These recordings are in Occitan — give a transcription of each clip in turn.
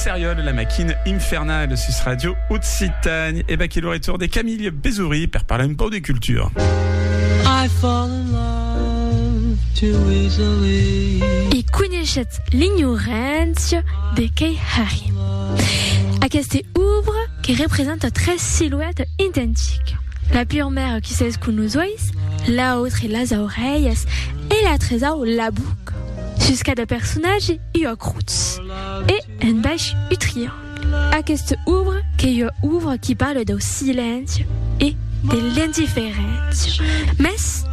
Seriol, la maquina infernale sus Radio Occitane. Et bah, quel retour de Camille Bézoury pour parler un peu de culture. I fall in love too easily. E coneixet l'ignorància de Kei Hari. Aquesta obra que représente tres silhouettes identiques. La pure mère qui sait ce qu'on nous la l'autre et les oreilles, et la trésor la boucle. Sus cada personatge ua crotz e un baish u triangle. Aquesta obra qu'ei ua obra qui parla dau silenci e de l'indiferéncia. Mès,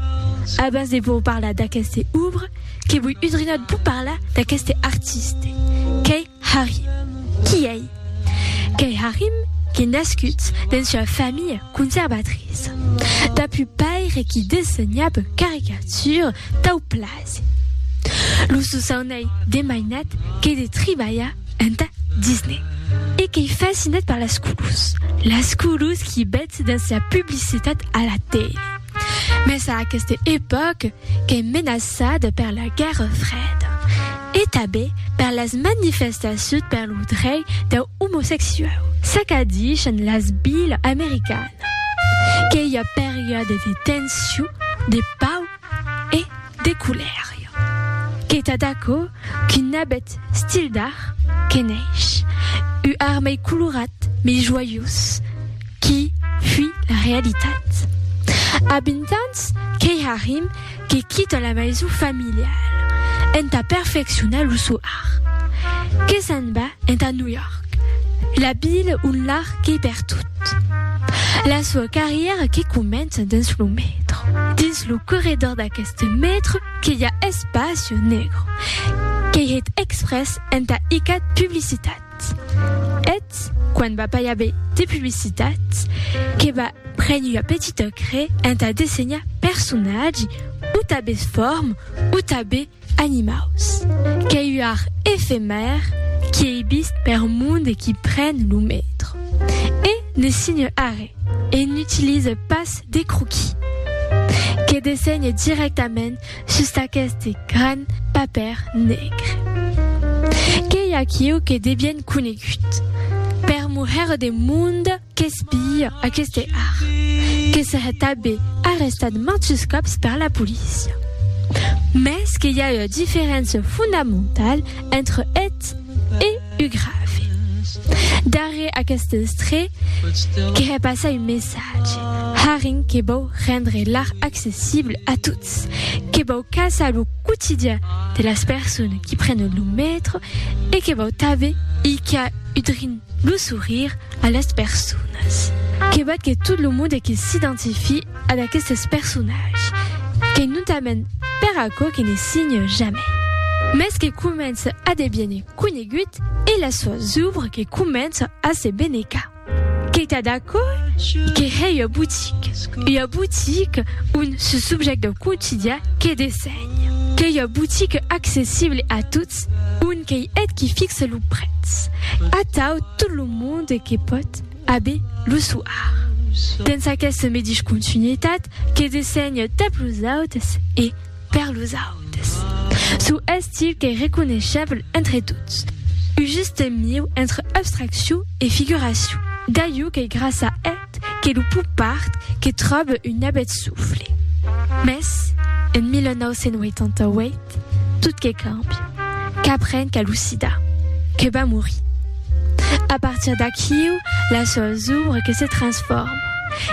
abans de vos parlar d'aquesta obra, que voi udrinar de vos parlar d'aqueste artiste, qu'ei Harry. Qui ei? Qu'ei Harry qu'ei nascut dens ua familha conservatriça. Tap un paire qui dessenhab caricatures tau plasi. Lo sosaun ei de mainat qu'ei de tribalhar enta Disney e qu'ei fascinat per las colors, las colors qui bètz dens la publicitat a la tele. Mès a aquesta epòca qu'es menaçada per la Guèrra Freda e tanben per las manifestacions per lo drei dau omosexuau. S'acadishan las vilas americanas que i a periòdes de tension, de pau e de colèria. Qu'es tad aquò qu'un abet stil d'art que neish, u armei colorat, mei joiós, Qui fui la realitat? A 20 ans, qu'ei Harim que quita la maison familiale entà perfeccionar lo sò art. Que s'en va entà New York, la vila ont l'art qu'ei pertot. La soa carrièra que comença dins lo metro. Dins lo corredor d'aqueste metro que i a Espacio Negro, qu'ei hèt exprès entà icat publicitat. publicitat et quan va pas i aver de publicitat que va prene ua petita cre entà dessenhar personatge o tabes form o tabe animaus qu'ei ua art efemèr qui ei vist per monde qui pren lo metro e ne signe arre e n'utilise pas de croquis que dessenhe directament Sus d'aqueste gran papèr negre. Qu'ei aquiu que de bien conegut. Per moher de monde qu'espia aqueste art. Que serè tabé arrestat mantus còps per la polícia. Mès que i a ua diferéncia fondamentala entre eth e u grave. Darrèr aqueste estrè que hè passar un messatge. Haring que vòu rendre l'art accessible a tots. Ets que vau caçar lo quotidian de las persones qui prenen lo metro e que vau tave i qu'a udrin lo sourire a las personas. Que vat que tot lo monde que s'identifie ad aquestes personatges, que notament per aquò que ne signe jamai, mès que comença a deviene conegut e las soas ouvres que començan a se benecar. Qu'ei tad aquò que hèi ua botique, ua botique on ce subjèct dau quotidian que dessenha. Qu'ei ua botique accessible a tots, on qu'ei eth qui fixe lo prètz, atau tot lo monde que pòt aver lo sò art. Dens aquesta medish continuitat que dessenha tap los autes e, Per los autes, çò estil qu'ei reconeishable entre tots, un juste mieu entre abstraccion e figuracion, d'aiu qu'ei grassa eth que lo pop art que tròbe un abet sofle. Mès, en 1988, tot que càmbia, qu'aprenc a lo sida, que va morir. A partir d'aquiu, las sòus obres que se transforman.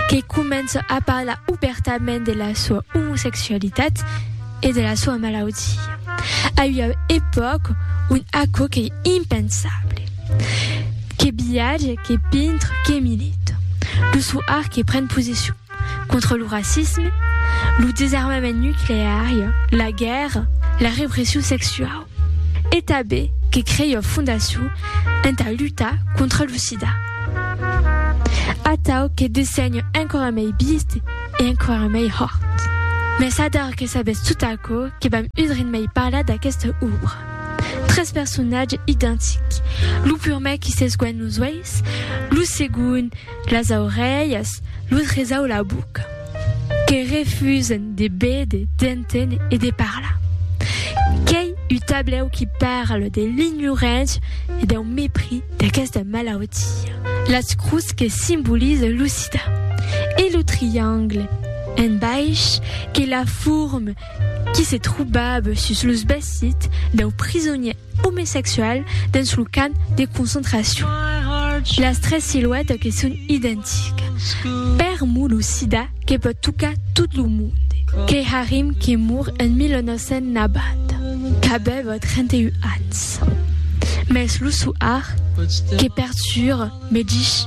que comença a parlar obèrtament de la soa omosexualitat e de la soa malaudia, a ua epòca ont aquò qu'ei impensable. Que viatge, que pintre, que milita. Lo sò art que pren posicion contra lo racisme, lo desarmament nucleari, la guèrra, la repression sexuau. E tanben que crèia fondacion entà lutar contra lo sida. Atau que dessenhe enquara mei bist e enquara mei hòrt. Mès adar que sabètz tot aquò que vam udrin mei parlar d'aquesta òbra. Tres personatges identics, lo purmèr qui s'esguènh los uèis, lo segond, las aurelhas, lo tresau la boca, que refusen de béder, d'enténer e de parlar. Qu'ei u tablèu qui parle de l'ignorància e dau mepris d'aquesta malautia. Las crus que simbolize lo sida e lo triangle en baish que la forme qui se trobava sus los vesits dau prisonièr omesexual dens lo camp de concentracion. Las tres siluètas que son identicas. Per mo lo sida que pòt tocar tot lo monde. Keharim que mor en 1990, qu'avèva 31 ans. Mès lo soar que perturba me dich.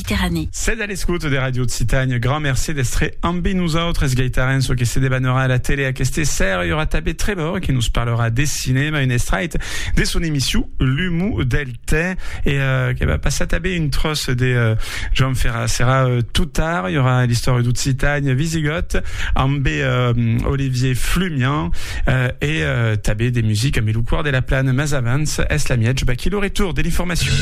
Mediterranèe. Sètz a l'escouta de Ràdio Occitània. Grand mercé d'èstre ambe nosautres. Gaitarèn çò que se debanerà a la tele aqueste sèra. I aurà tanbe Trevor que nos parlarà de cinèma, un estrait de son emission L'humo del tè. E que va passar tanbe un tròç de Joan Ferrà. Serà tot tard. I aurà l'istòria d'Occitània visigòt ambe Olivier Flumian e tanbe de musica ambe lo Còr de la Plana. Mas avans, es la miètge baquí lo retorn de l'informacion.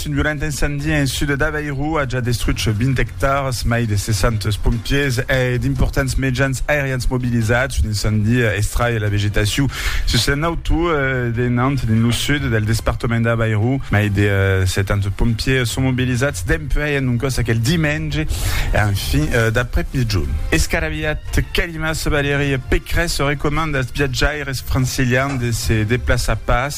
Un violent incendie en sud d'Aveiro a ja destruch 20 ectars, mai de 60 pompiers e d'importants mejans aerians mobilizats. Un incendie estraie la vegetaciu sus un auto de Nantes, dins lo sud del despartament d'Aveiro. Mai de 70 pompiers son mobilizats dempuèi un còs aquel dimenge en fin d'après-migjon. Escaraviat, Calimas, Valérie Pécresse recomanda als viatjaires francilians de se deplaçar pas.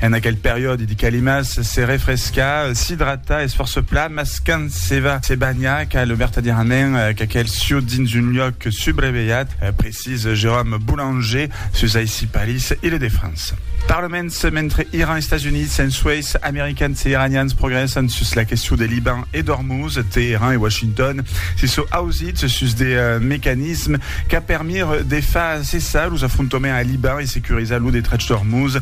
En aquel periòde de calimas, se refrescar, s'idratar es fòrça plan, mas quand se va se banhar cal vertadièrament qu'aquel sieu dins un luòc subrevelhat, precís Jérôme Boulanger sus aicí París, Île-de-France. Parlaments, mentre Iran, Estats Units, en Suèis, Americans e Iranians progrèssan sus la question de Liban e d'Ormuz, Teheran e Washington se sò ausits sus de mecanismes qu'a permire de far cessar los afrontoments a Liban e securizar lo detrach d'Ormuz,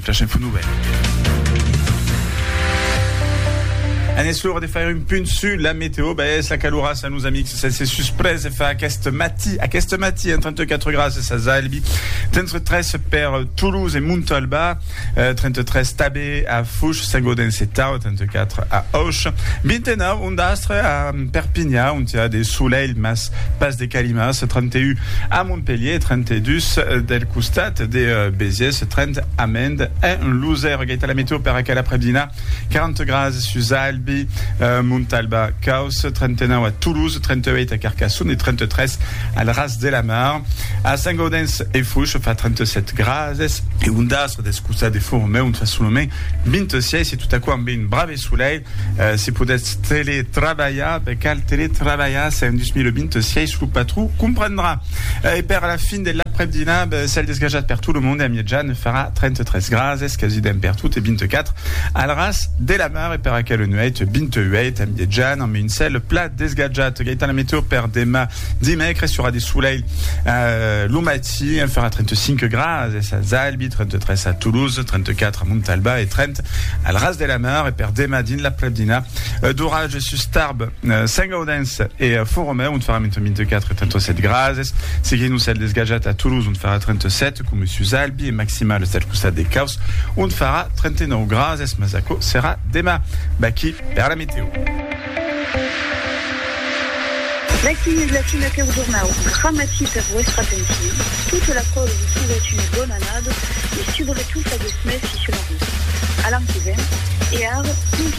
Flash Info Nouvèlas. En es l'ora de faire un punt su la meteo, ben es la calorassa, nos amics, sense susprès e fa aquest matí, aquest matí, en 34 grases a Zalbi, 33 per Toulouse e Montalbà, eh, 33 tabé a Fush, Saint-Gaudens e Tau, 34 a Auch, 29 Un d'astre a Perpinha, ont i a de solelh, mas pas de calimas, 31, a Montpelhier, 32, del costat de Besiès, 30, a Mende, en Losèr. Agaita la meteo per aquel aprèp-dinar, 40 grases sus Albi, Montalba, Causse, 39 a Toulouse, 38 a Carcassonne e 33 al ras de la mar. A Saint-Gaudens e Fouches fa 37 grases. E un d'astre deth costat de Fourmeu, ont fa solament 26, e tot aquò amb un brave. Solei, se podètz teletrabalhar, ben cal teletrabalhar se en 2026 lo patró comprendrà. E per la fin de l'aprèp-dinar, ben cèl desgajat per tot lo monde a miejan farà 33 grads, es quasi demp per tot e 24 al ras de la mar e per aquela nuèit 28 a miejan amb un cèl plat desgajat. Gaitana Meteo per demà dimècres, i aurà de solei lo matin. Si, el farà 35 grads es a Zalbi, 33 a Toulouse, 34 a Montalba e 30 al ras de la mar e per demà dins la prebdina d'oratge sus Tarbes, Saint-Gaudens e Font-Romeu ont farà entre 24 e 37 grads. Seguint lo cèl desgajat a Toulouse ont farà 37 coma sus Albi e maximals del costat de Caus ont farà 39 grads mas aquò serà demà. Vaquí per la meteo. L'aquí es l'aquí aqueu jornau gramati per vuestra atencion, tota la còl vos souet una bona annada e subretot aguest mes si se marrit. A l'an que ven e ara,